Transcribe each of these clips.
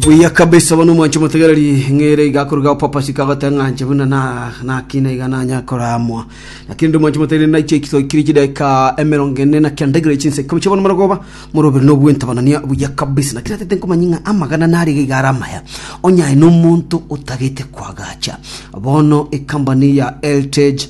buya kabisa bono omwancho motegereri ng'ere igakoruga opapasi kagotee ng'anche buna na- nakina iga nanya koramwa lakini ndi omwancho motegereri naiche ekitoikiri chideka emerongo ene na kenda igere chinsa ikomi chiabono marogoba morobere na obwentabonania buya kabisa lakini atete nkomanya ng'a amagana nare iga iga are amaya onye aye na omonto otagete koagacha bono ekambani ya eltage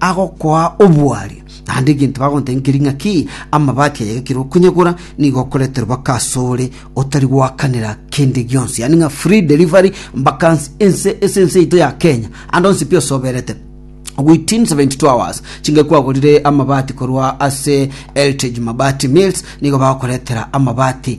agokoa obwari, naende egento bagontengeria ng'a ki amabati aye gekire okunyegora, nigo okoreterwa baka asore otari goakanera kende gionsi, yaani ng'a free delivery mbaka nse ense ase ense yaito ya Kenya, ande onsi pi osoberete. Within 72 hours chinga kwagorire amabati korwa ase Eltej Mabati Mills nigo bagokoretera amabati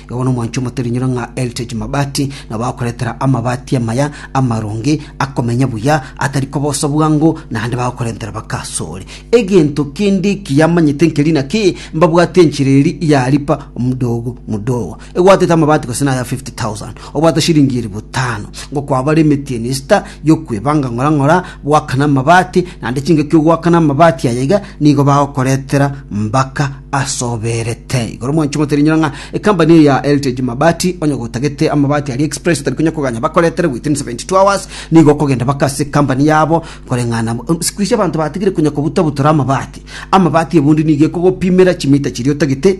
Igo nomonto omote rinyiro ng'a Eltej Mabati nabo akoretera amabati amaya amaronge akomenya buya atari kobosa bwango, naende bagokorentera bakasore. Egento kende ekiya amanyete nkeri naki, mbabwate enchera eri ya lipa mdogo mdogo. Egwatete amabati gose naya 50,000, obwate shilingi elifu tano, ngokwabare emetieni esita, y'okwebanga ng'ora ng'ora goakana amabati, naende chingaki ogoakana amabati aya iga nigo bagokoretera mbaka asoberete. Igoro mwanche ngotera inyora ng'a ekambani eye ya Heritage Mabati onye gotagete amabati aria express otari konya koganya bakoretere within 72 hours nigo okogenda baka ase ekambani yabo koreng'ana siku ici abanto batigire konya kobutabutora amabati. Amabati ebundi nigo ekogopimera chimita chiria otagete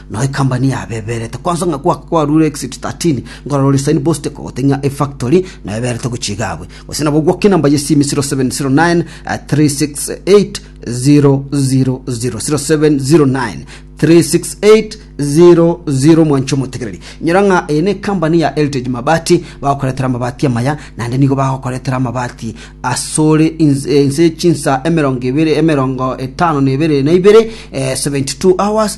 Nao ekambani yabeberete kwansa ng'a goaka kwaruure exit 13, nkorora oria sign post kogotebia ng'a efactory nao eberete gochia igabwe. Gose nabo gwoke enamba y'esimi 0709 368 000, 0709 368 00 mwancha omotegereri nyora ng'a eye nekambani ya heritage mabati bagokoretera amabati amaya naende nigo bagokoretera amabati asore inse chinsa emerongo ebere emerongo etano na ebere na ibere 72 hours